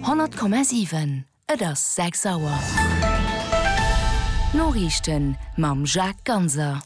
100,7 Et ass 6 Auer. D'Noriichten mam Jacques Ganser.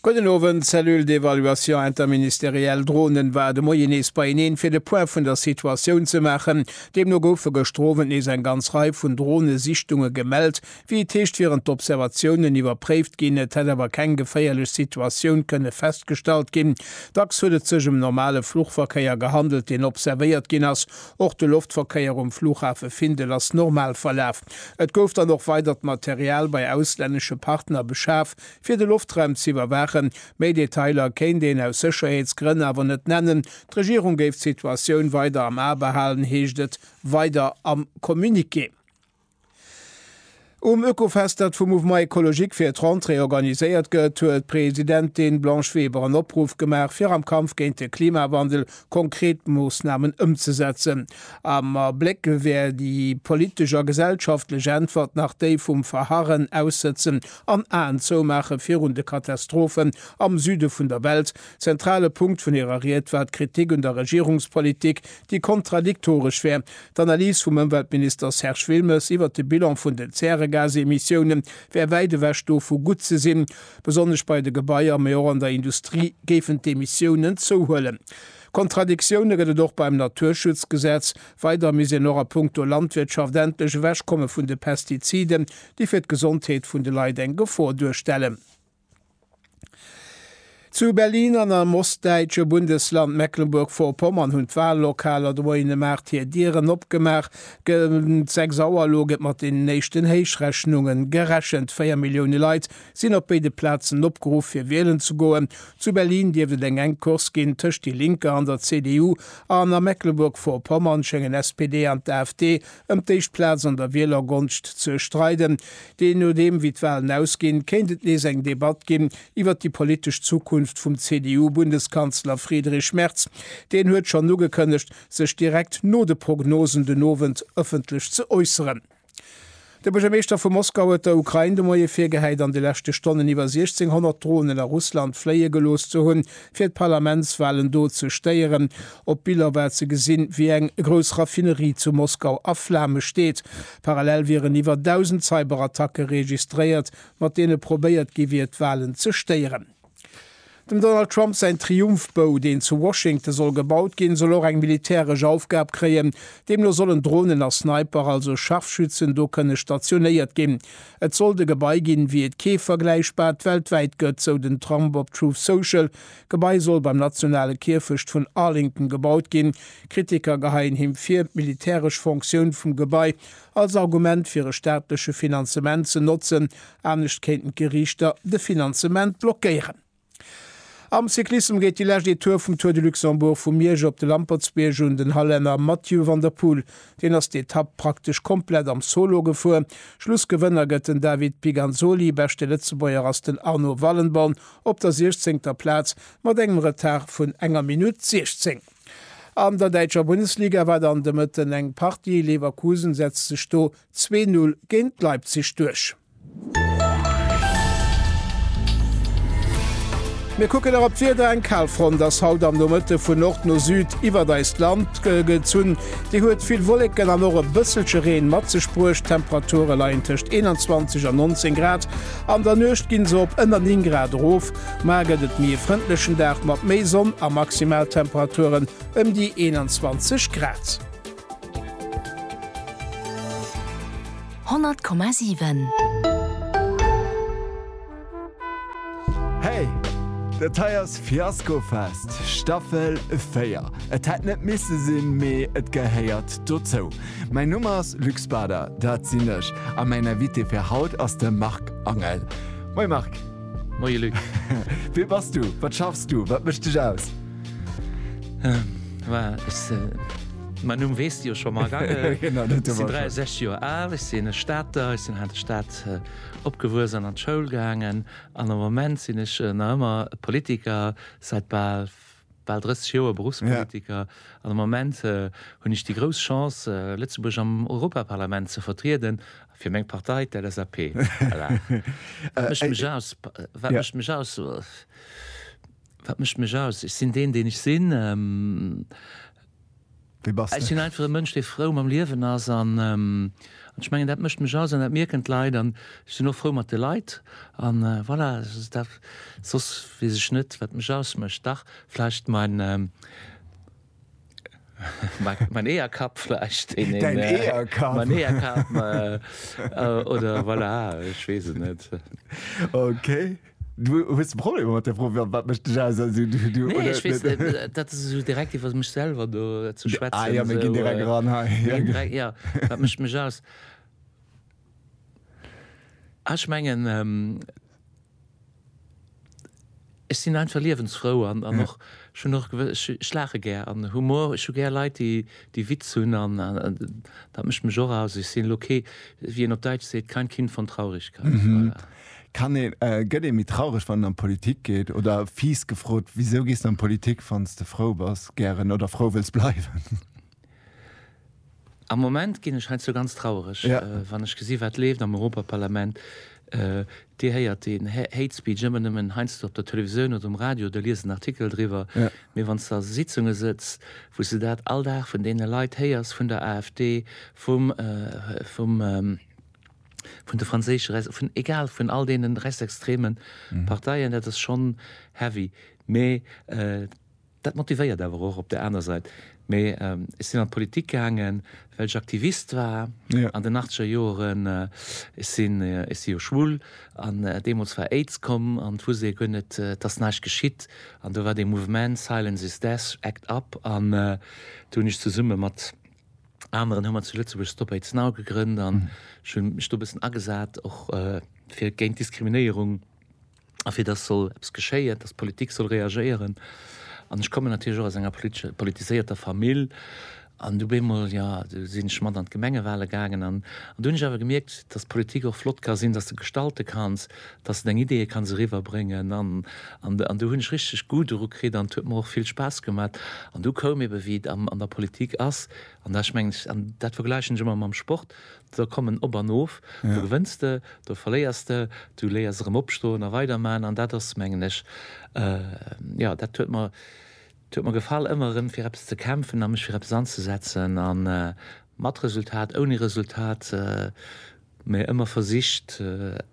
Gudden Owend. D'Cellule d'évaluation interministérielle Dronen war de Moien nees beieneen, fir de Point vun der Situatioun ze maachen. Deemno goufe gëschter Owend nees eng ganz Rei vun Dronesichtunge gemellt, Wéi et heescht, wieren d'Observatiounen iwwerpréift ginn, et hätt awer keng geféierlech Situatioun kënne festgestallt ginn. Dacks huet et sech ëm normale Fluchverkéier gehandelt, deen observéiert ginn ass. Och de Loftverkéier um Flughafe Findel ass normal verlaf. Et gouf dann och weidert Material bei auslännesche Partner beschaf, fir de Loftraum ze iwwerwaachen. Méi Detailer kéint een aus Sécherheetsgrënn awer net nennen. D'Regierung géif d'Situatioun weider am A behalen, heescht et weider am Communiqué. Um Oekofest, dat vum Mouvement Ecologique fir d'Rentrée organiséiert gëtt, huet d'Presidentin Blanche Weber en Opruff gemaach, fir am Kampf géint de Klimawandel konkret Moossnamen ëmzesetzen. Am Abléck wär déi politesch a gesellschaftlech Äntwert nach déi vum Verharren, Aussëtzen an Aen zoumaache virun de Katastrophen am Süde vun der Welt. Zentrale Punkt vun hirer Ried war d'Kritik un der Regierungspolitik déi kontradiktoresch wär. D'Analys vum Ëmweltminister Serge Wilmes iwwert de Bilan vun den Zäregasemissiounen wär wäit ewech dovu gutt ze sinn. Besonnesch bei de Gebaier, mee och an der Industrie géifen d'Emissiounen zouhuelen. Kontradiktioune gëtt et och beim Naturschutzgesetz. Weider misst een och a punkto Landwirtschaft endlech ewechkomme vun de Pestiziden, déi fir d'Gesondheet vun de Leit eng Gefor duerstellen. Zu Berlin an am ostdäitsche Bundesland Mecklenburg-Vorpommern hunn d'Wallokaler Droinemart hir Dieren opgemaach. Géint 6 Auer elo gëtt mat den éischten Héichrechnunge gerechent. Véier Millioune Leit sinn op béide Plazen opgeruff, fir wielen ze goen. Zu Berlin dierft et eng enk Course ginn tëscht déi Linker an der CDU an a Mecklenburg-Vorpommern schéngen SPD an d'AfD Ëm d'éischt Plaz an der Wielergonscht ze streiden. Dee nodeem wéi d'Walen ausginn, kéint et nees eng Debatt ginn iwwert déi politesch Zukunft vum CDU-Bundeskanzler Friedrich Merz. Deen huet schonn ugekënnegt, sech direkt no de Prognosen den Owend ëffentlech ze äusseren. De Buergermeeschter vu Moskau huet der Ukrain de Moie virgehäit, an de leschte Stonnen iwwer 1,600 Dronen a Russland fléie gelooss ze hunn, fir d'Parlamentswalen do ze stéieren. Op Biller war ze gesinn, wéi eng grouss Raffinerie zu Moskau a Flame steet. Parallel wieren iwwer 1.000 Cyberattacke registréiert, mat deene probéiert gi wier, d'Walen ze stéieren. Dem Donald Trump säin Triumphbou, deen zu Washington soll gebaut ginn, soll och eng militäresch Aufgab kréien. Deemno sollen Dronen a Sniper, also Scharfschützen, do kënne stationéiert ginn. Et sollt e Gebai ginn, wéi et kee vergläichbart weltwäit gëtt, sou den Trump op Truth Social. D'Gebai soll beim nationale Kierfecht vun Arlington gebaut ginn. Kritiker geheien him vir, d'militäresch Fonctioun vum Gebai als Argument fir e staatleche Finanzement ze notzen, anescht kéinten d'Geriichter de Finanzement blockéieren. Am Cyclissem geet déi lescht Etape vum Tour de Luxembourg vu Miersch op de Lampertsbierg un. Den Hallänner Mathieu van der Poel, deen ass d'Etapp praktesch komplett am Solo gefuer. Schlussgewënner gëtt den David Piganzoli, beschte Lëtzebuerger ass den Arno Wallenborn op der siechzéngter Plaz mat engem Retard vun enger Minutt 16. An der däitscher Bundesliga war dann de Mëtten eng Partie, Leverkusen setzt sech do zwee Null géint Leipzig duerch. Mir kucken nach op d'Wieder, Eng Kalfront ass haut am Nomëtte vun Nord no Süd iwwert eist Land gezunn. Déi huet vill Wolleken an och e bësselche Reen mat sech bruecht. D'Temperature leien tëscht 21 an 19 Grad. An der Nuecht ginn se op ënner 9 Grad erof. Maer gëtt et méi e frëndlechen Dag mat méi Sonn a Maximaltemperaturen ëm déi 21 Grad. Honnert Komma siwen. Hey! Dat hei ass Fiaskofest Staffel 4. Et hätt net misse sinn, mee et gehéiert dozou. Mäin Numm ass Luc Spader, dat sinn ech, a mäin Invité fir haut ass de Marc Angel. Moie Marc! Moie Luc! Wee bass du? Wat schaffs du? Wat mécht dech aus? Mäin Numm weess de jo scho mol. Ech sinn 63 Joer al, ech sinn e Stater, ech sinn hei an der Stad opgewuess an an d'Schoul gaangen an am Moment sinn ech nach ëmmer Politiker, säit bal 30 Joer Berufspolitiker. An am Moment hunn ech déi grouss Chance, Lëtzebuerg am Europaparlament ze vertrieden fir meng Partei, d'LSAP. Wat mécht mech aus? Wat mécht mech aus? Ech sinn deen, deen ech sinn. Wie bass de? Ech sinn einfach e Mënsch, dee frou mam Liewen ass. An ech mengen, dat mécht mech aus an dat mierken d'Leit. An ech sinn och frou mat de Leit. An voilà, soss weess ech net, wat mech ausmécht. Dach vläicht mäin. Mein Eeërkapp vläicht. Däin Eeërkapp. Mein Eeërkapp oder voilà, ech weess et net. Okay. Du hues e Problem mat där Fro, wat mécht dech aus? Nee, ech weess net, dat ass esou direkt iwwer mech selwer do ze schwätzen. Ah jo, mir ginn direkt eran hei. Jo, wat mécht mech aus? Ah, ech mengen, Ech sinn einfach liewensfrou an an och ech hunn och gewëss ech ech laache gär an Humor. Ech hu gär Leit déi déi Witz hunn an dat mécht mech och aus. Ech sinn elo kee wéi een op Däitsch seet, kein Kind von Traurigkeit. Voilà. Kann ee gëtt ee méi traureg wann een an d'Politik geet? Oder fies gefrot, wisou gees de an d'Politik wann s de frou bass gären oder frou wëlls bleiwen? Am Moment ginn ech heiansdo ganz trauereg, wann ech gesinn, wat leeft am Europaparlament. Dir héiert deen Hate Speech ëmmer nëmmen heiansdo op der Televisioun oder um Radio oder liest en Artikel driwwer. Mee wann s de a Sitzunge sëtz, wou s de dat all Dag vun deene Leit héiers, vun der AfD, vum, vum, vun de franséische, vun egal, vun all deene rechtsextreme Parteien, dat ass schonn heavy. Mee Dat motivéiert awer och op der aner Sait. Mee ech sinn an d'Politik gaangen, well ech Aktivist war an den achtzeger Joeren. Ech sinn, ech si jo schwul an deemools war Aids komm an et wousst ee guer net, et ass näischt geschitt. An do war dee Mouvement Silence is Death, Act Up an do hunn ech zesumme mat aneren, hu mer zu Lëtzebuerg Stop Aids Now gegrënnt an ech hu mech do e bëssen agesat och fir géint Diskriminéierung. a fir dass soll eppes geschéien, dass d'Politik soll reagéieren. An ech kommen natierlech och aus enger politesche, politiséierter Famill. An du bemol, jo, du sinn ech mat an d'Gemengewale gaangen an do hunn ech awer gemierkt, dass d'Politik och flott ka sinn, dass de gestalte kanns, dass de deng Ideeë kanns eriwwerbréngen. An, an, an do hunn ech richteg Goût doru kritt an et huet mer och vill Spaass gemat. An du koum ebe wéi et am, an der Politik ass, an da ech mengen, an dat vergläichen ech ëmmer mam Sport, Do kommen op an of, do gewënns de, do verléiers de, du léiers erëm opstoen a weiderman an dat ass mengen ech, jo dat huet mer, dat huet mer gefall ëmmer erëm fir eppes ze kämpfen a mech fir eppes anzesetzen a mat Resultat, ouni Resultat, mä ëmmer versicht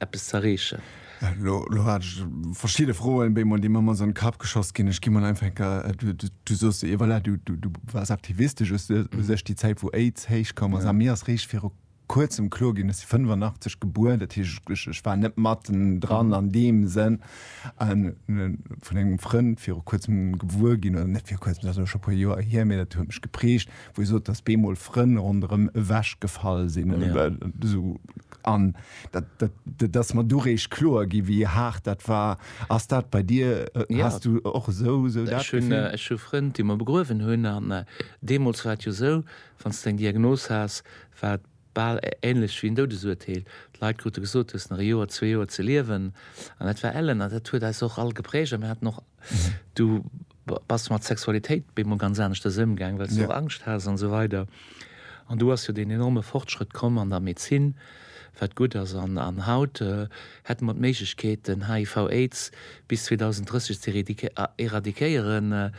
eppes z'erreechen. Elo hat ech verschidde Froen béi mol déi mer mol an Kapp geschoss ginn. Ech gi mol einfach enker du sos ee voilà du du wars aktivistesch u sech déi Zäit wou Aids héich komm ass a mir ass réischt viru kuerzem kloer ginn, ech si 85 gebuer, dat heescht ech ech war net matten dran an deem Sënn an hun e vun engem Frënd viru kuerzem gewuer ginn oder net viru kuerzem dat ass elo scho e puer Joer hier mee dat huet mech geprägt wou e sot, dass bemol Frënn ronderëm ewech gefall sinn oder yeah. esou an dat, dat, dat, dass man du recht kloer gi wie hart dat war ass dat bei dir äh, ja. hast du och so so dat schön äh, schon Freund die man begruewen hunn an äh, demols war jo so wann du eng Diagnos hast war bal ähnlech wie en Doudesurteel. Leit krute gesot hues nach Joer zwee Joer ze liewen an dat war ellen an dat huet eis och all geprägt am hat noch mhm. du Bass du mat Sexualitéit bemol ganz aneschters ëmgaang, well s du och Angscht has an esou weider. An do ass jo deen enorme Fortschrëtt komm an der Medezin, wat gutt ass. An haut hätte mer d'Méiglechkeet, den HIV, Aids bis 2030 ze eradiquéieren.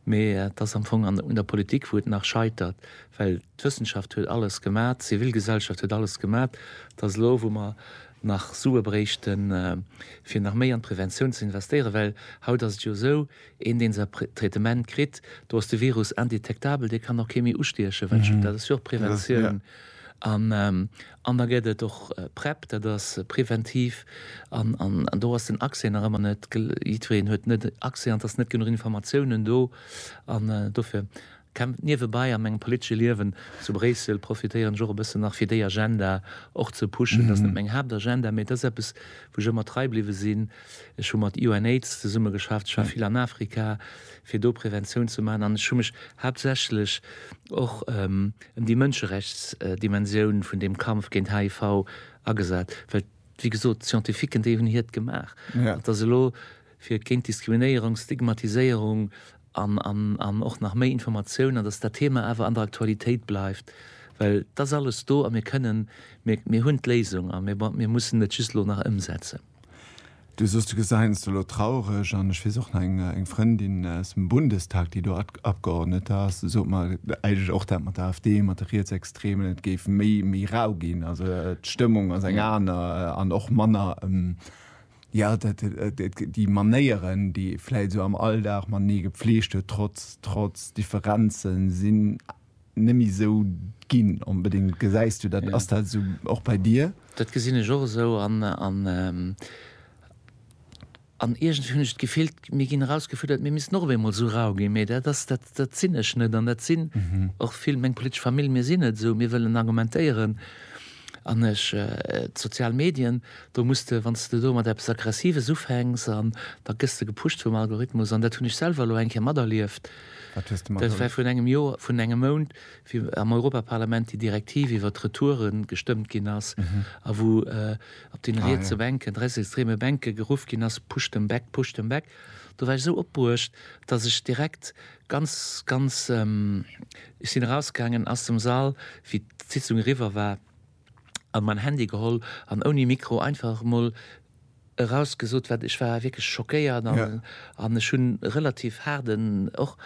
Mee et ass am Fong un der Politik, wou et nach scheitert, well d'Wëssenschaft huet alles gemat, d'Zivilgesellschaft huet alles gemat. Et ass elo, wou mer nach Sue bréichten, fir nach méi an d'Preventioun ze investéieren, well haut ass et jo esou, een, dee säi Traitement kritt, do ass de Virus indetektabel, dee kann och kee méi ustiechen, wat scho, dat ass jo och Preventioun. An da gëtt et och Prep, dat ass preventiv, an do ass den Accès nach ëmmer net, jiddwereen huet net Accès an et ass net genuch Informatiounen do an dofir, Kämpft niewebai a mengem politesche Liewen zu Bréissel, profitéieren ech och e bëssen nach fir déi Agenda och ze pushen. Ass net meng Haaptagenda, mee et ass eppes wou ech ëmmer trei bliwwe sinn. Ech hu mat UNAIDS zesumme geschafft, ech war vill an Afrika fir do Präventioun ze maachen an ech hu mech haaptsächlech och ëm déi Mënscherechtsdimensioun vun deem Kampf géint HIV agesat, well wéi gesot d'Scientifiquen déi hunn hiert gemaach. Et ass elo. fir géint Diskriminéierung, Stigmatiséierung an och nach méi Informatioun an datt dat Thema awer an der Aktualitéit bleift, well et ass alles do a mir kënnen, mir hunn d'Léisung a mir mussen et just elo nach ëmsetzen. Du soos, du gesengst elo traureg an ech weess och nach eng Frëndin aus dem Bundestag, déi do Abgeordnete ass, déi sot mer eigentlech och dat mat der AfD, mat de Rietsextremen, et géif méi rau ginn, also d'Stëmmung ass eng aner an och manner Jo, dat, déi Manéieren, déi ee vläit esou am Alldag matenee gepflegt huet, trotz, trotz Differenzen, sinn neméi esou, ginn onbedéngt, gesäis du dat, ass dat esou och bei dir? Dat gesinn ech och esou an, an, an iergendwéi hunn ech d'Gefill, mir ginn erausgefuerdert, mir missten och op eemol esou rau ginn, mee dat ass, dat, dat sinn ech net an dat sinn och vill, meng politesch Famill, mir sinn net esou, mir wëllen argumentéieren. An ech, d'sozial Medien, do muss de, wann s de do mat eppes Aggressives ufänks an da gëss de gepusht vum Algorithmus an dat hunn ech selwer elo eng Kéier materlieft. Wat hues de materlieft? Dat war virun engem Joer, vun engem Mount, wéi am Europaparlament déi Direktiv iwwert d'Retouere gestëmmt ginn ass a wou op deene rietse Bänken, rechtsextreme Bänke geruff ginn ass, Push them back, push them back. Do war ech esou opbruecht, datt ech direkt Ganz, ganz, ech sinn erausgaangen aus dem Sall, wéi d'Sitzung eriwwer war, an mäin Handy geholl an ouni Mikro einfach emol erausgesot, wat ech war wierklech schockéiert an ech hunn relativ haarden och,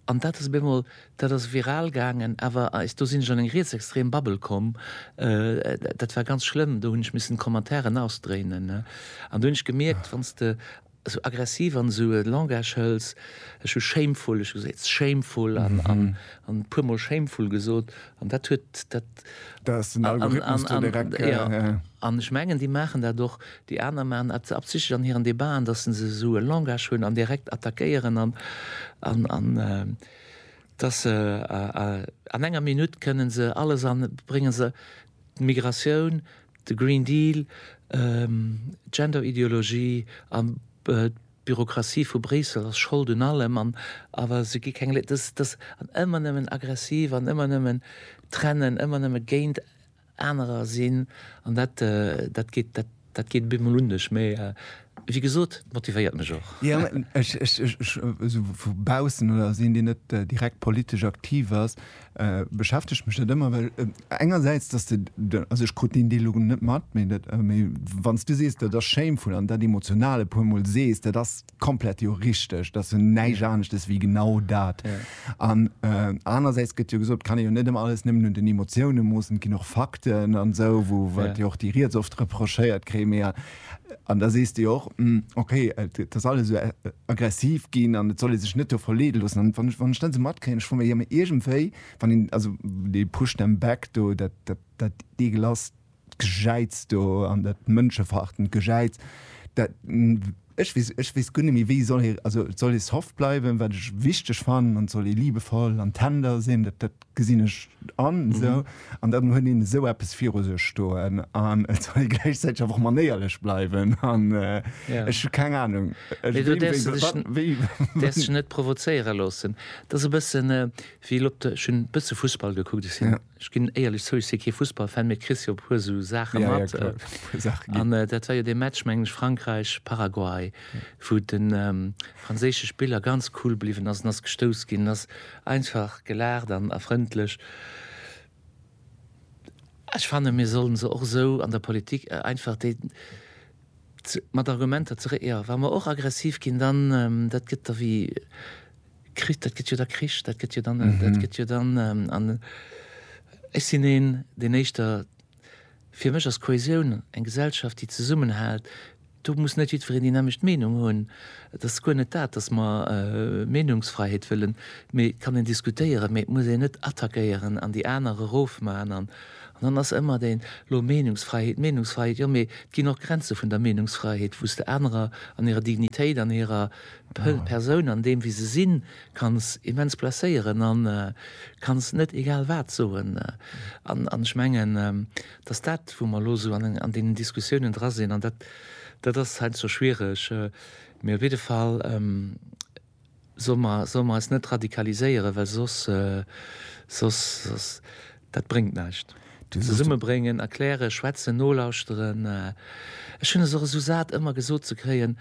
an dat ass op eemol, dat ass viral gaangen, awer eis, do sinn ech an eng rietsextrem Bubble komm, dat war ganz schlëmm, do hunn ech missen d'Commentairen ausdréinen, an do hunn ech gemierkt, wann s de. esou aggressiv an esou e Langage hëls, ech hu shameful, ech hu gesot it's shameful an e puer mol shameful gesot an dat huet dat. Da ass den Algorithmus do direkt. Jo, an ech mengen déi maachen dat och, déi aner maachen dat absichtlech an hiren Debaten, datt se esou e Langage hunn an direkt attackéieren an an datt se an enger Minutt kënnen se alles an bréngen se d'Migratioun, De Green Deal, d'Genderideologie an d'Bürokratie vu Bréissel ass Schold un allem an awer se gi keng Lé-, dass, dass, an ëmmer nëmmen aggressiv an ëmmer nëmmen trennen, ëmmer nëmme géint anerer sinn an dat, dat geet, dat, dat geet op eemol unneg. Mee wéi gesot, et motivéiert mech och. Jo, ech, ech, ech, ech, esou vu baussen oder als een, deen net direkt politesch aktiv ass, Beschäftegt mech dat ëmmer, well engersäits, dass de, also ech krut deen Deel elo net mat, mee dat, mee wann s du sees, dat ass shameful an dat emotional e puermol sees, dat ass komplett jo richteg. Dat ass jo näischt aneschtes wéi genau dat. An anersäits gëtt jo gesot, et kann ee jo net ëmmer alles nëmmen un den Emotiounen moossen, et ginn och Fakten an esou, wou, wat jo och déi riets oft reprochéiert kréien. Mee An da sees de jo och, Hm, ok, et ass alles esou aggressiv ginn an et soll ee sech net do verleede loossen. An wann ech, wann ech dann esou matkréien, ech froe mech, jo mee iergendwéi, wann een, also dee push them back do, dat, dat, dat ekelasst Gejäiz do an dat mënscheverachtend Gejäiz, dat, ech weess, ech weess guer net méi, wéi soll ee, also soll ee soft bleiwen, wat ech wichteg fannen, an soll ee liebevoll an tender sinn, dat, dat, Gesinn ech an, esou. An dann huet een esou eppes viru sech stoen an et soll ee gläichzäiteg awer och manéierlech bleiwen an ech hu keng Anung, wéi. Do däerfs de dech, däerfs dech net provozéiere loossen. Et ass e bëssen, wéi elo op de, ech hunn e bësse Fussball gekuckt, ech sinn, ech ginn éierlech zou, ech si kee Fussballfan, mee et kriss jo e puer esou Saache mat. An dat war jo dee Match, mengen ech, Frankräich, Paraguay, wou de franséische Spiller ganz cool bliwwen ass an ass gestouss ginn, ass Einfach gelaacht an a frëndlech. Ech fannen mir sollen se och esou an der Politik einfach déi mat Argumenter ze re, jo wa mer och aggressiv ginn dann dat gëtt da wéi Krich, dat gëtt jo da Krich, dat gëtt jo dann dat gëtt jo dann an ech sinn een deen éischter Fir mech ass Kohäsioun eng Gesellschaft, déi zesummenhält. Do muss net jiddwereen déi nämmlecht Meenung hunn. Et ass guer net dat, dass mer Meenungsfreiheet wëllen, mee et kann een diskutéieren, mee et muss een net attackéieren an déi aner erofman. An dann ass ëmmer deen, elo Meenungsfreiheet, Meenungsfreiheet, jo mee et ginn och Grenze vun der Meenungsfreiheet, wou s de anerer an hirer Dignitéit, an hirer Persoun, an deem wéi se sinn, Kanns immens blesséieren an kanns net egal wat soen. An ech mengen, dass dat wou mer elo esou an deenen Diskussiounen dra sinn, an dat dat ass heiansdo schwiereg, mee op jidde Fall solle mer solle mer eis net radikaliséieren, well soss soss soss dat bréngt näischt. Zesummebréngen, erklären, schwätzen, nolauschteren. Ech hunn es och esou sat ëmmer gesot ze kréien,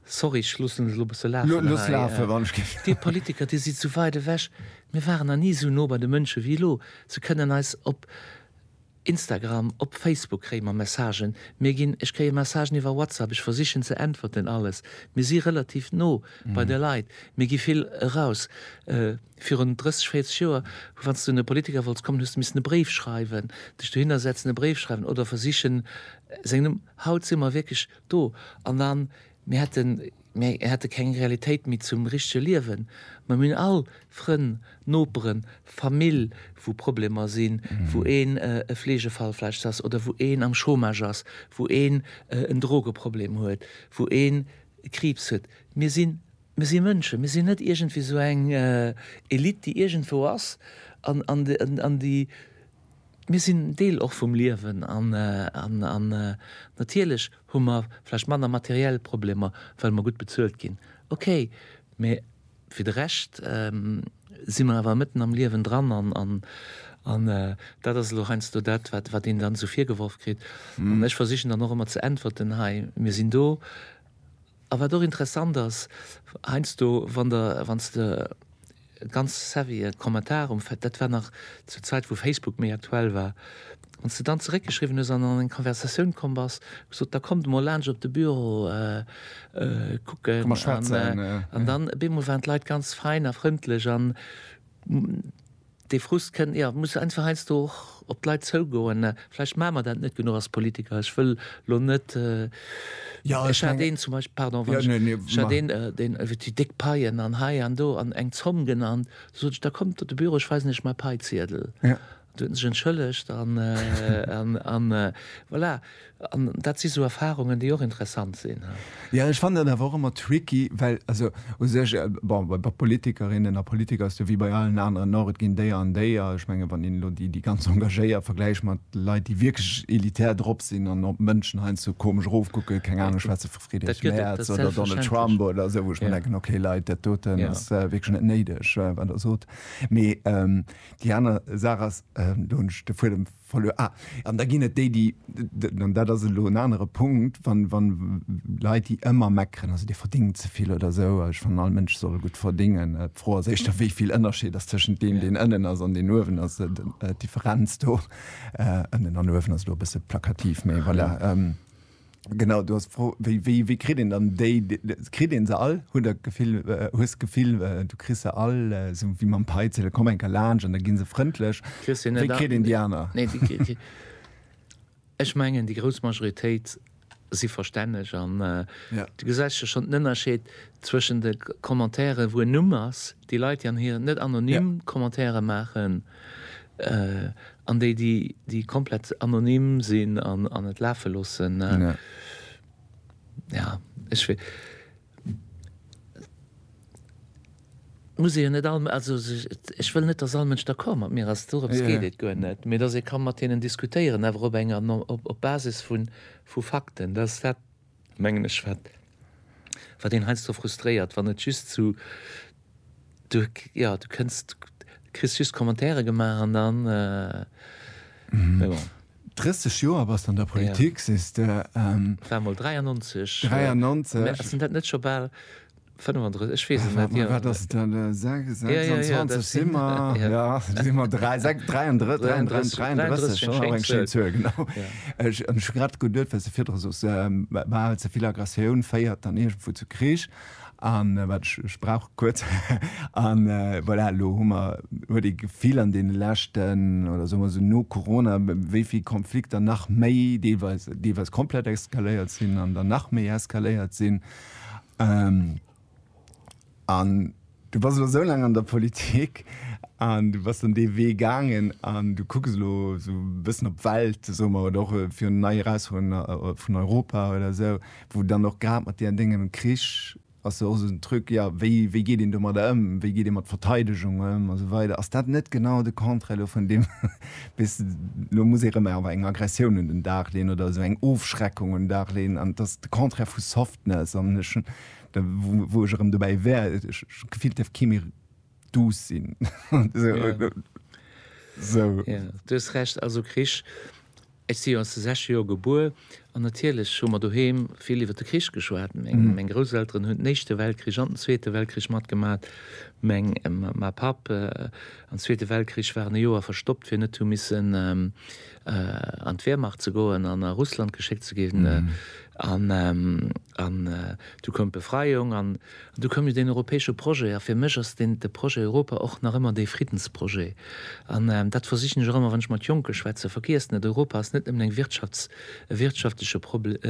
Sorry, ech loossen et elo e bësse lafen Looss hei. lafe wann ech géif. Dir Politiker, Dir sidd esou weit ewech. Mir waren nach ni esou no bei de Mënsche wéi elo. Se kënnen eis op Instagram, op Facebook kréie mer Messagen. Mir ginn, ech kréie Messagen iwwer WhatsApp, ech versichen ze äntwerten, alles. Mir si relativ no bei de Leit. Mir gi vill eraus. Virun 30, 40 Joer, wann s du un e Politiker wollts kommen, hues du missen e Bréif schreiwen, dech dohinner setzen, e Bréif schreiwen oder versichen seng Numm. Haut si mer wierklech Do an an, mir hätten, mir hätte keng Realitéit méi zum richtege Liewen. Ma mir hunn all Frënn, Noperen, Famill, wou Problemer sinn, wou een e Fleegefall vläicht ass oder wou een am Chômage ass, wou een en Drogeproblem huet, wou een Kriibs huet. Mir sinn, mir si Mënschen, mir sinn net iergendwéi esou eng Elite, déi iergendwou ass an, an, an déi Mir sinn Deel och vum Liewen an natierlech hu mer vläicht manner materiell Problemer, well mer gutt bezuelt ginn, okay, mä fir de Rescht si mer awer mëtten am Liewen dran an dat ass elo heiansdo dat, wat een dann esou virgeworf kritt. An ech versichen dann och ëmmer ze äntwerten, hei, mir sinn do. A wat och interessant ass, heiansdo wann der, wann s de ganz savvye Kommentar um Fa, dat war nach zur Zäit wou Facebook méi aktuell war, wann s de dann zeréckgeschriwwen hues an an eng Konversatioun komm bass, gesot, da kommt emol laanscht op de Büro kucken an, an dann op eemol waren d'Leit ganz fein a frëndlech an, Dee Frust kënnt, jo, muss einfach heiansdo och op d'Leit zougoen. Vläicht maache mer dat net genuch als Politiker. Ech wëll elo net, mee ech hat een zum Beispill, pardon, wann ech, ech hat een, deen iwwert déi déck Paien an hei an do an eng Zomm genannt, du sot ech, da kommt op de Büro, ech weisen iech mäi Paiziedel. Du huet en sech entschëllegt an, an, an voilà. An dat si sou Erfarungen, déi och interessant sinn. Jo, ech fannen dat awer och ëmmer tricky, well also u sech, bon, bei Politikerinnen a Politiker ass et jo wéi bei allen aneren och, et ginn déier an déier. Ech mengen, wann een elo déi, déi ganz engagéiert vergläicht mat Leit, déi wierklech elitär drop sinn an op Mënschen heiansdo komesch erofkucken, keng Ahnung, schwätze vu Friedrich Merz oder Donald Trump oder esou, wou ech mir denken, okay Leit, dat doten ass wierklech net néideg, wat Der sot. Mee déi aner Saach ass, do hunn ech de Fuedem Verluer, ah, an da ginn et déi, déi, an dat ass elo en anere Punkt, wa wa Leit, déi ëmmer meckeren, also Dir verdéngt ze vill oder esou, a ech fannen, all Mënsch soll gutt verdéngen. D'Fro ass éischter, wéi vill Ënnerscheed ass tëschent deem, deen ënnen ass, an deen uewen ass. D'Differenz do, ënnen an uewen, ass elo e bësse plakativ, mee voilà. Genau, du hast Fro, wéi, wéi, wéi kritt een dann déi, kritt een se all? Huet der Gefill, äh, hues Gefill, äh, du kriss se all, äh, sou wéi mam Peitzel, komm enker laanscht an da ginn se frëndlech. Wéi kritt een déi aner? Nee, déi, déi, déi ech mengen, déi grouss Majoritéit si verstänneg an äh, ja. du gesäis jo schonn den Ënnerscheed zwëschen de Commentairen, wou en Numm ass, déi Leit, déi an hir net anonym ja. Commentaire maachen, An déi, déi komplett anonym sinn an et lafe loossen, jo, ech wee. Et muss ee jo net all, also ech wëll net, datt all Mënsch d'accord mat mir ass, dorëms geet et guer net, mee datt ee ka mat deenen diskutéieren, awer op enger, op Basis vu Fakten. mengen ech, wat wat een heiansdo frustréiert, wann et just zu du ja du kënns du kriss just Commentaire gemaach an dann mee bon. 30 Joer bass de an der Politik, sees de. War mol 93. 93. Ass en dat net scho bal? 35, ech weess et net. Mä wat ass et dann? 26 si mer, jo, si mer 33, 33, 33, ass och eng schéin Zuel, genau. Ech hu grad geduet, wat s de virdru sos, bal ze vill Aggressioun féiert dann iergendwou zu Krich. An wat ech, ech brauch kuerz. An voilà, elo hu mer, huet ee d'Gefill an deene leschten, oder soe mer esou no Corona, wéi vill Konflikter nach méi deelweis, deelweis komplett eskaléiert sinn an dann nach méi eskaléiert sinn. Ähm, an du bass elo sou laang an der Politik an du bass dann dee Wee gaangen an du kucks elo sou e bëssen op d'Welt, soe mer, oder och äh, fir nei Erausfuerderungen äh, vun Europa oder sou, wou dann och grad mat deenen Déngen um Krich ass jo och sou en Truc, ja, wéi, wéi geet een domadder ëm, wéi geet ee mat Verteidegung ëm a sou weider. Ass dat net genau de Contraire elo vun deem, Bis elo muss ee rëm awer eng Aggressioun un den Dag leeën oder esou eng Ofschreckung un den Dag leeën. An et ass de Contraire vu Softness. An ech hunn, wou ech erëm dobäi wär, ech hunn d'Gefill, et dierft kee méi duuss sinn. Jo, du hues Recht. Also Krich, ech si jo an de sechzeger Jore gebuer an natierlech hu mer doheem vill iwwer de Krich geschwat. Meng Grousselteren hunn den Éischte Weltkrich an den Zweete Weltkrich matgemaach. Ma Papp Am Zweete Weltkrich war en e Joer verstoppt, fir net hu missen an d'Wehrmacht ze goen an a Russland geschéckt ze ginn. An du koum d'Befreiung an du koum jo deen europäesche Projet. A fir mech ass deen, de Projet Europa och nach ëmmer dee Friddensprojet. An dat versichen ech och ëmmer, wann ech mat Jonke schwätzen, Vergiesst net, Europa ass net nëmmen eng Wirtschafts-, e wirtschaftleche Prob-,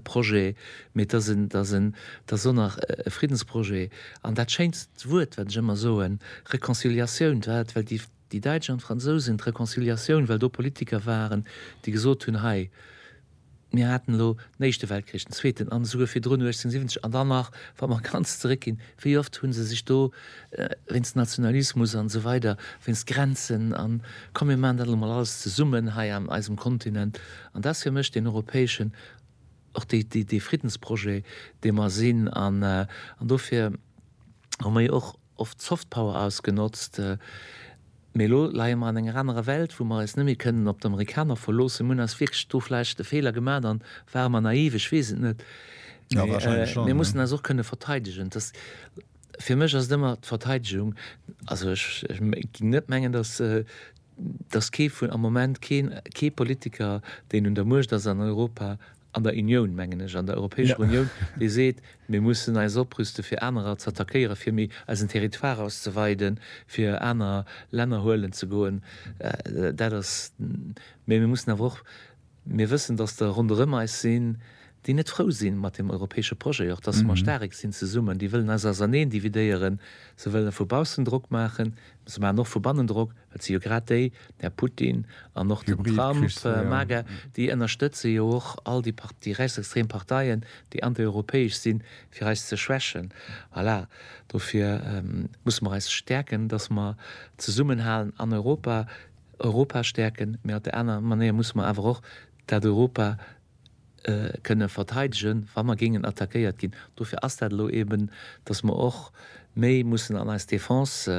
Projet, mee et ass en, et ass en, et ass och nach e Friddensprojet. An dat schéinst Wuert, wat ech ëmmer soen, Reconciliatioun, dat well déi déi Däitsch an d'Fransousen d'Reconciliatioun, well do Politiker waren, déi gesot hunn, hei, mir haten elo den Éischte Weltkrich, den Zweeten an esouguer virdrun 1870 an dann nach, wa mer ganz zeréckginn, wéi oft hu se sech do wéinst Nationalismus an esou weider, wéinst Grenzen an, komm mir maachen dat elo mol alles zesummen hei an eisem Kontinent. An dat ass fir mech deen europäeschen och dee Friddensprojet, dee mer sinn, an dofir hu mer jo och oft d'Soft Power ausgenotzt, mee elo leie mer an enger anerer Welt, wou mer eis net méi kënnen op d'Amerikaner verloossen. Mir hunn eis wierklech do vläicht e Feeler gemaat an ware mer naiv, ech weess et net, mee mir mussen eis och kënne verteidegen. Et ass, fir mech ass et ëmmer d'Verteidegung, also ech géing net mengen, datt dass kee vun, am Moment keen, kee Politiker, deen un der Muecht ass an Europa, an der Unioun mengen ech, an der Europäescher Unioun, dee seet, mir mussen eis oprüste fir anerer z'attackéieren, fir méi eisen Territoire auszeweiden, fir aner Länner huelen ze goen. Dat ass, mä mir mussen awer och, Mir wëssen, dass der ronderëm eis sinn, déi net frou si mat deem europäesche Projet, och dass mer staarek sinn zesummen, déi wëllen eis auserneen dividéieren, se wëlle vu baussen Drock maachen, mä se maachen och vu bannen Drock, well et si jo grad déi, den Här Putin an och den Trump, MAGA, déi ënnerstëtze jo och all déi, déi rechtsextrem Parteien, déi antieuropäesch sinn, fir eis ze schwächen. Voilà, dofir musse mer eis stäerken, dass mer zesummenhalen an Europa. Europa stäerken, mee op där aner Manéier musse mer awer och dat Europa kënne verteidegen, wa mer géingen attackéiert ginn. Dofir ass dat elo eben, datt mer och méi mussen an eis Defense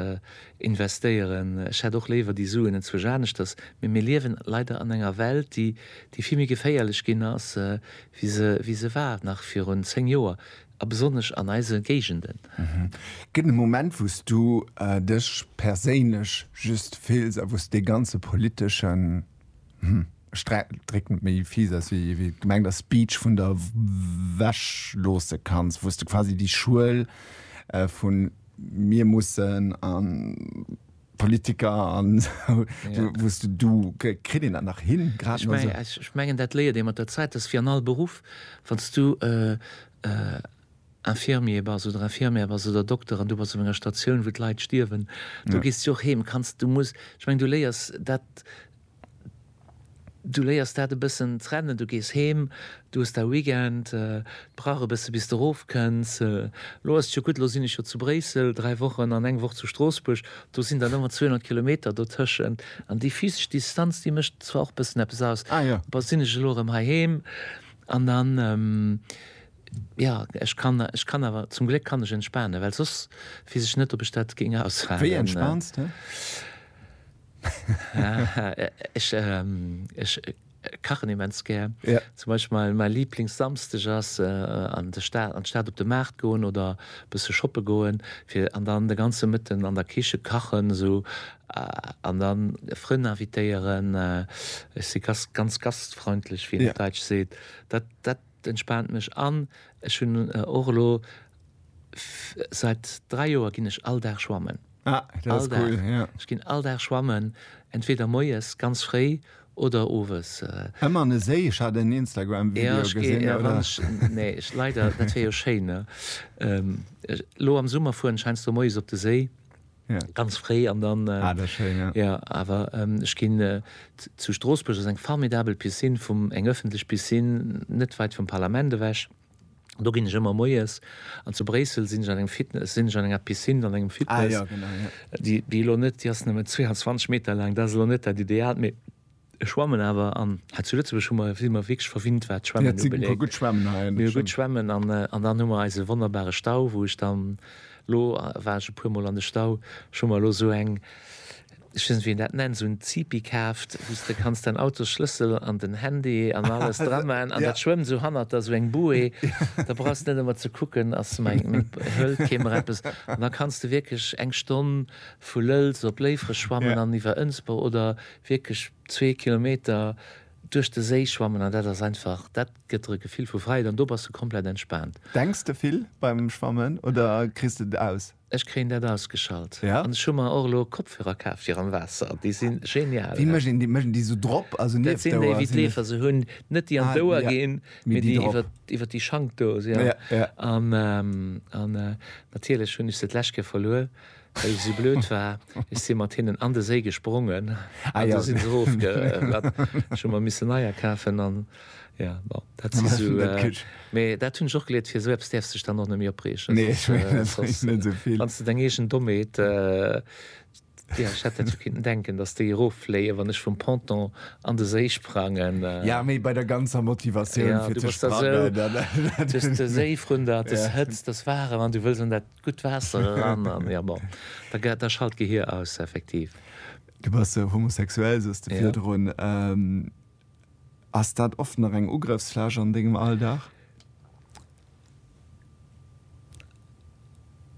investéieren. Ech hätt och léiwer déi Suen enzwuesch aneschters, mee mir liewen leider an enger Welt, déi vill méi geféierlech ginn ass, wéi se war nach virun zéng Joer. A besonnesch an eise Géigenden. Gëtt et e Moment, wou s du dech perséinlech just fills a wou s dee ganze politesche, hm, Sträit, dréck net méi fies aus wéi et gemengt ass, Speech vun der Wäsch loosse kanns, wou s de quasi déi Schuel vu mir mussen an, Politiker an wouste du kritt een dat nach hin? Ech mengen dat léiert ee mat der Zäit, dat ass wéi an all Beruff, wann s du Infirmier bass oder Infirmière bass oder Dokter an du bass op enger Statioun, wou d'Leit stierwen, do gees du jo och heem. Ech meng du léiers dat. Du léiers dat e bëssen trennen, du gees heem, du hues dau Weekend, et brauch e bësse bis de rof kënns. Lo ass et jo gutt, lo sinn ech jo zu Bréissel 3 Wochen an eng Woch zu Stroossbuerg, do sinn dann ëmmer 200 Kilometer dotëschent an déi physesch Distanz déi mécht zwar och bëssen eppes aus. Bon, sinn ech elo erëm heiheem an dann, jo, ech kann, ech kann awer, zum Gléck kann ech entspanen, well soss weess ech net, ob ech dat géing aushaalen. Wéi entspaans de? Ech kachen immens gär. Zum Beispill mäi Liblingssamsteg ass an d'Stad op de Maart goen oder e bësse shoppe goen, fir an dann de ganze Mëtten an der Kiche kachen esou an da Frënn invitéieren. Ech si ganz gastfreundlech, wéi een op Däitsch seet. Dat Et entspaant mech an ech hunn och elo säit 3 Joer ginn ech all Dag schwammen. Ah, dat ass cool, ja. Ech ginn all Dag schwammen, entweder moies ganz fréi oder owes. Ëmmer an e Séi? Ech hat en Instagram-Video gesinn. Jo, ech ginn, ech ginn, wann ech, nee, ech, leider, dat wär jo schéin, ne? Elo am Summer fueren ech heiansdo moies op de Séi. ganz fréi an dann jo awer ech ginn zu Stroossbuerg ass eng formidabel Piscine vum eng ëffentlech Piscine net weit vum Parlament ewech an do ginn ech ëmmer moies an zu Bréissel sinn ech an engem Fitness sinn ech an enger Piscine an engem Fitness déi elo net déi ass nëmme 22 Meter laang dat ass elo net dat idealt mee Ech schwammen awer an ha zu Lëtzebuerg hu mer, si mer wierklech verwinnt wat d'Schwämmen ubeléngt. Mir hu gutt Schwämmen hei an der Schwämm. An dann hu mer eise wonnerbare Stau, wou ech dann elo, war ech e puer Mol an de Stau, ech hu mer elo esou eng, ech weess net wéi een dat nennt, esou en Zipi kaaft, wou s de kanns däin Autosschlëssel an den Handy an alles dra maachen an dat schwëmmt esou hannert der, esou eng Bouée, da brauchs de net ëmmer ze kucken, ass meng, hëlt kee mer eppes an da kanns de wierklech eng Stonn vu Lëlz op Léifreg schwammen an iwwer Ënsber oder wierklech zwee Kilometer duerch de Séi schwammen an dat ass einfach, dat gëtt der e Gefill vu Fräiheet an do bass de komplett entspaant. Denks de vill beim Schwammen oder kriss de et aus? Ech kréien dat ausgeschalt Ja? an ech hu mer och elo Kopfhörer kaf fir am Waasser, déi si genial. Wéi mécht een déi? Mécht een déi esou drop, also Dat nieft sinn déi d'Ouer? wéi Sinn d'Leefer se hunn, net déi an Ah, d'Ouer ja, ginn, mee mee déi déi drop. iwwert iwwert déi Schank do, se ja. Ja, ja. An an natierlech hunn ech se d'lescht Kéier verluer, Well ech esou blöd war, ech si mat hinnen an de Séi gesprongen an du sinn se erofgeratt. Ech hu mer missen neier kafen an jo, bon, dat si sou. Mee dat hunn ech och geleert, fir esou eppes däerfs dech dann och net méi opreegen. Nee, ech mengen, dat bréngt net esou vill. Wanns de deng eegen Dommheet, jo, ech hätt dat jo kinnten denken, dass déi eroffléien, wann ech vum Ponton an de Séi sprangen. Jo, mee bei der ganzer Motivatioun, fir ze sprangen. Jo, du bass da sou, dës Séifrunde, dës Hëtzt, dës Waarem an du wëlls an dat Gutt Waasser eran an ja bon, da schalt d'Gehir aus effektiv. Du bass homosexuell, sous de virdrun. Ass dat oft nach eng Ugrëffsfläch an dengem Alldag?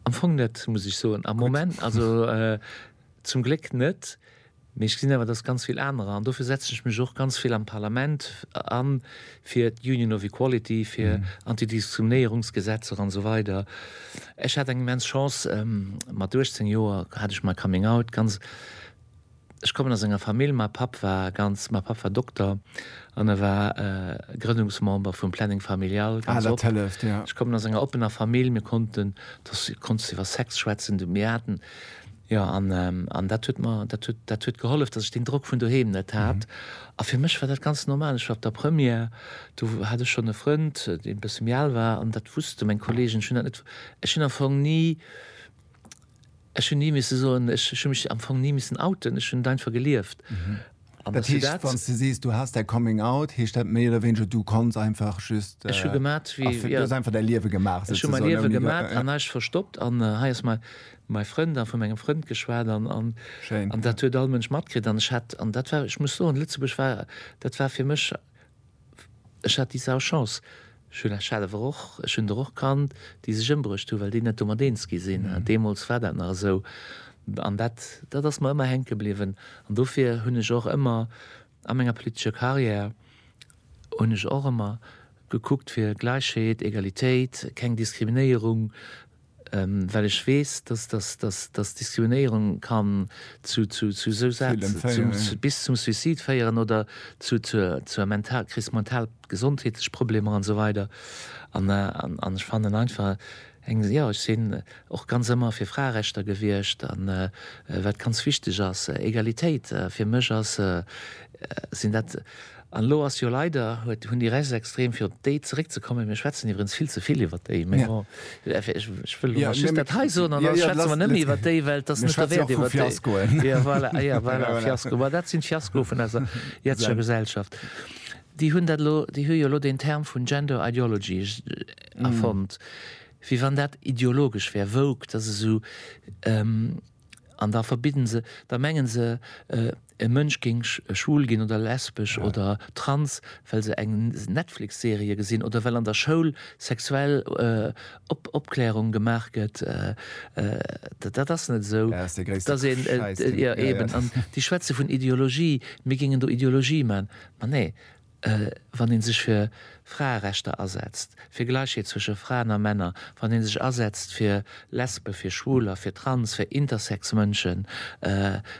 Am Fong net, muss ech soen. Am Moment, also. Zum Gléck net, mee ech gesinn awer, dass ganz vill anerer, an dofir setzen ech mech och ganz vill am Parlament an, fir d'Union of Equality, fir Antidiskriminierungsgesetzer an esou weider. Ech hat eng immens Chance, mat 18 Joer hat ech mäi Coming Out, ganz, ech kommen aus enger Famill, mäi Papp war ganz, mäi Papp war Dokter an e war Grënnungsmember vum Planning Familial, ganz op. Ech kommen aus enger oppener Famill, mir konnten, du konntest iwwer Sex schwätzen, du, mir haten Jo, an, an dat huet mer, dat huet, dat huet gehollef, datt ech deen Drock vun doheem net hat. A fir mech war dat ganz normal. Ech war op der Première, do hat ech schonn e Frënd, dee e bësse méi al war, an dat wusste meng Kolleegen. Ech hunn dat net, ech hunn am Fong ni, ech hunn ni misse soen, ech hu mech am Fong ni missen outen, ech hunn et einfach gelieft. An dass du dat. Wanns de sees du has däi Coming Out, heescht dat méi oder wéineger du kanns einfach just. Ech hu gemat wéi, jo. Du has einfach däi Liewe gemaach souzesoen. Ech hu mäi Liewe gemat an eischt verstoppt an hei ass mäi Frënd a vu mengem Frënd geschwat an dat huet all Mënsch matkritt an ech hat, an dat war, ech muss soen, Lëtzebuerg war, dat war fir mech, Ech hat déi sau Chance, ech hunn Asch selwer och, ech hunn der och kannt, déi sech ëmbruecht hunn, well déi net domat eens gi sinn. Deemools war dat nach esou an dat, dat ass mer ëmmer hänke bliwwen. An dofir hunn ech och ëmmer a menger politescher Karriär, hunn ech och ëmmer gekuckt fir Gläichheet, Egalitéit, keng Diskriminéierung, well ech weess, dass, dass, dass, dass Diskriminéierung kann zu, zu, zu esou Saache, Villen féieren, zum, ja. bis zum Suicide féieren oder zu, zur, zur mental, Kris, mental gesondheetlech Problemer an esou weider. An, an, an ech fannen einfach eng, jo, ech sinn och ganz ëmmer fir Fraerechter gewiescht an wat ganz wichteg ass, Egalitéit. Fir mech ass, sinn dat, An elo ass jo leider, huet, hunn déi Rechtsextrem, fir op déi zeréckzekommen, mir schwätzen iwwerens vill ze vill iwwert déi, mee bon, ech wëll elo mol just dat hei soen an da schwätze mer net méi iwwert déi, well et ass net derwäert iwwert déi. Jo, voilà, ah jo, voilà, Fiasko, ma dat sinn d'Fiaskoe vun eiser jetzescher Gesellschaft. Déi hunn dat elo, déi hu jo elo deen Term vun Gender Ideology erfonnt, wéi wann dat ideologesch wär, woke, dat ass esou, an da verbidden se, da menge se, E Mënsch géing schwul ginn oder lesbesch oder trans, well se eng Netflix-Serie gesinn oder well an der Schoul sexuell Opklärung gemaach gëtt. Dat ass net esou. Dat ass dee gréisste Schäisdreck. Déi schwätze vun Ideologie, mir géingen do Ideologie maachen. Ma nee, wann ee sech fir Fraerechter asetzt, fir Gläichheet zwësche Fraen a Männer, wann ee sech asetzt fir Lesben, fir Schwuler, fir Trans, fir intersex Mënschen,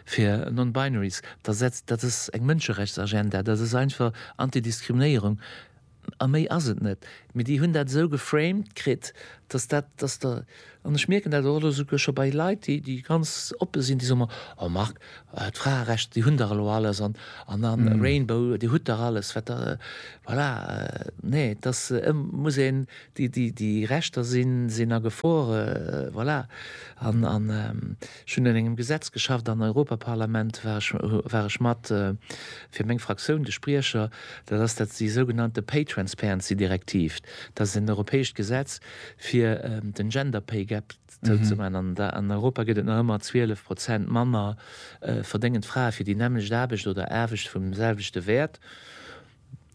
fir non-binaries, da setzt, dat ass eng Mënscherechtsagenda, dat ass einfach Anti-Diskriminéierung a méi ass et net. Mee déi hunn dat esou geframed kritt, datt dat, datt der, An ech mierken dat och elo souguer scho bei Leit, déi, déi ganz oppe sinn, déi soe mer, oh Marc, d'Fraerechter, déi hunn der elo alles an, an da Rainbow, Dir hutt dach alles, wat der, voilà. Nee, et ass, et muss een, déi, déi, déi Rechter sinn, sinn a Gefor, voilà. An, an ech hunn un engem Gesetz geschafft am Europaparlament, war ech, war ech mat, fir meng Fraktioun, de Spriecher, dat ass dat, déi sougenannte Pay-Transparency-Direktiv, dat ass en europäescht Gesetz, fir den Gender Pay Gap zouzemaachen. An an Europa gëtt et nach ëmmer 12 Prozent manner verdéngend Frae fir déi nämmlecht Aarbecht oder Aarbecht vum selwechte Wäert.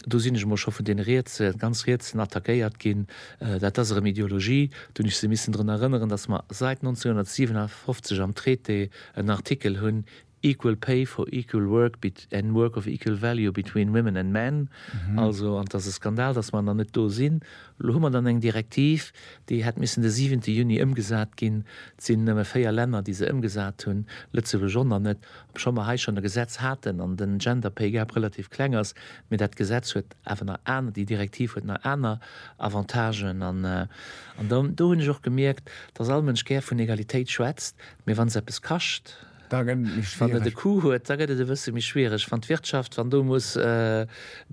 Do sinn ech emol scho vun deene Rietse, ganz Rietsen attackéiert ginn. Dat ass erëm Ideologie. Do hunn ech se missen drun erënneren, datt mer säit 1957 am Traité en Artikel hunn, Equal pay for equal work bet and work of equal value between women and men, also, an et ass e Skandal, datt mer nach net do sinn. Elo hu mer dann eng Direktiv, déi hätt missen de siwente Juni ëmgesat ginn. Et sinn nëmme véier Länner, déi se ëmgesat hunn, Lëtzebuerg och nach net, obschonn mer hei schonn e Gesetz haten an den Gender pay gap relativ kleng ass. Mee dat Gesetz huet awer nach aner, déi Direktiv huet nach aner Avantagen. An do hunn ech och gemierkt, datt all Mënsch gär vun Egalitéit schwätzt, mee wann se eppes kascht, Wann et e Coût huet, da gëtt et e bësse méi schwiereg. Wann d'Wirtschaft, wann do muss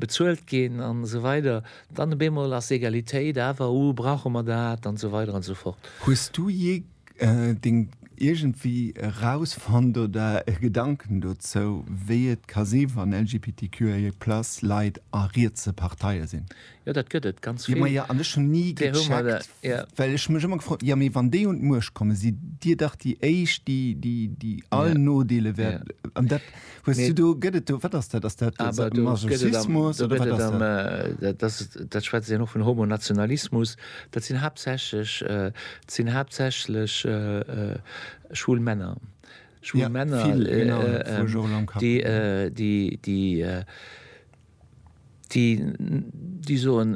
bezuelt ginn an esou weider, dann op eemol ass Egalitéit awer, oh brauche mer dat an esou weider an esou fort. Hues du jee deng iergendwéi erausfonnt oder e Gedanken dozou, wéi et ka si wann LGBTQIA+ Leit a rietse Parteie sinn? Jo, dat gëtt et ganz vill. Jo, ma jo, an ech hunn ni gecheckt, well ech mech ëmmer gefrot, jo, mee wann déi un d'Muecht kommen, sidd Dir dach déi éischt, déi, déi all Nodeele wäert. An dat hues du do, gëtt et do, wat ass dat? Ass dat Masochismus oder wat ass dat? Dat, dat schwätze ech och vun Homonationalismus. Dat sinn haaptsächlech, et sinn haaptsächlech schwul Männer, schwul Männer, déi, déi, déi, déi déi soen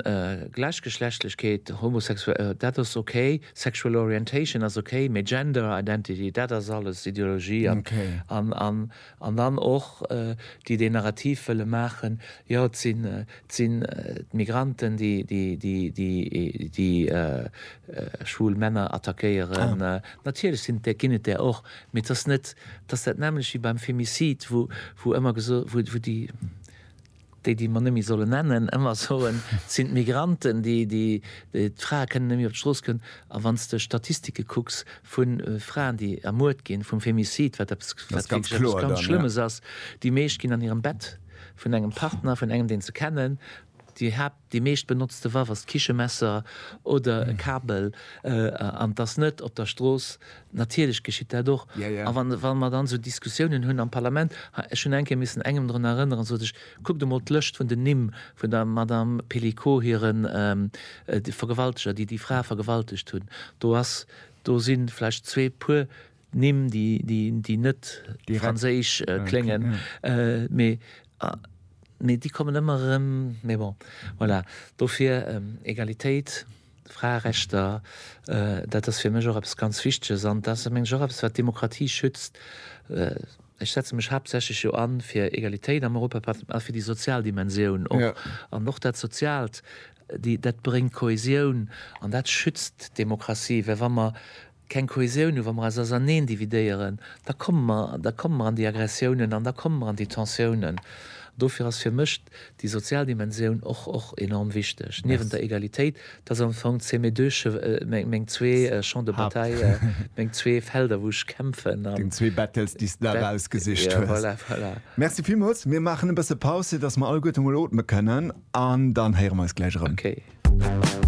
Gläichgeschlechtlechkeet, Homosexualitéit, dat ass ok, Sexual Orientation ass ok, mee Gender Identity, dat ass alles Ideologie an an an dann och déi deen Narrativ wëlle maachen, jo et sinn et sinn d'Migranten déi déi déi déi déi schwul Männer attackéieren. Natierlech sinn et där ginn et där och, Mee et ass net, et ass dat nämmlecht wéi beim Femicide, wou, wou ëmmer geso, wou, wou déi, déi, déi mer net méi solle nennen, ëmmer soen, et sinn d'Migranten, déi, déi, déi, d'Frae kënnen net méi op d'Strooss goen. A wann s de Statistike kucks vu Fraen, déi ermuert ginn, vum Femicide, wat eppes, wat wierklech eppes ganz Schlëmmes ass, déi meescht ginn an hirem Bett vun engem Partner, vun engem, deen se kennen, déi Haapt. Déi meescht benotzte Waff ass d'Kichemesser oder e Kabel, an et ass net op der Strooss. Natierlech geschitt dat och. A wa mer dann esou Diskussiounen hunn am Parlament, ech hunn eng Kéier missen engem drun erënneren, sot ech, kuckt emol d'Lëscht vun den Nimm vun der Madame Pelicot hire Vergewalteger, déi déi Fra vergewaltegt hunn, do ass, do si vläicht zwee puer Nimm déi net franséisch kléngen, mee déi kommen ëmmer erëm. Mee bon, voilà, dofir Egalitéit, Fraerechter, dat ass fir mech och eppes ganz Wichteges an dat ass, meng ech, och eppes, wat d'Demokratie schützt. Ech setze mech haaptsächlech jo an fir Egalitéit am Europaparlament a fir déi sozial Dimensioun och. An och dat Soziaalt, dat bréngt Kohäsioun an dat schützt d'Demokratie, well wa mer keng Kohäsioun hu, wa mer eis auserneen dividéieren, da komme mer, da komme mer an déi Aggressiounen an da komme mer an déi Tensiounen. Dofir ass fir mech déi sozial Dimensioun och, och enorm wichteg, niewent der Egalitéit. Dat ass am Fong, c'est mes deux che-, meng, meng zwee Champs de bataille, meng zwee Felder, wou ech kämpfen an. Deng zwee Battles, déi s de der erausgesicht hues. Ja, voilà, voilà. Merci villmools. Mir maachen e bësse Paus, fir dass mer alleguerte mol otme kënnen an dann héiere mer eis gläich erëm. Okay.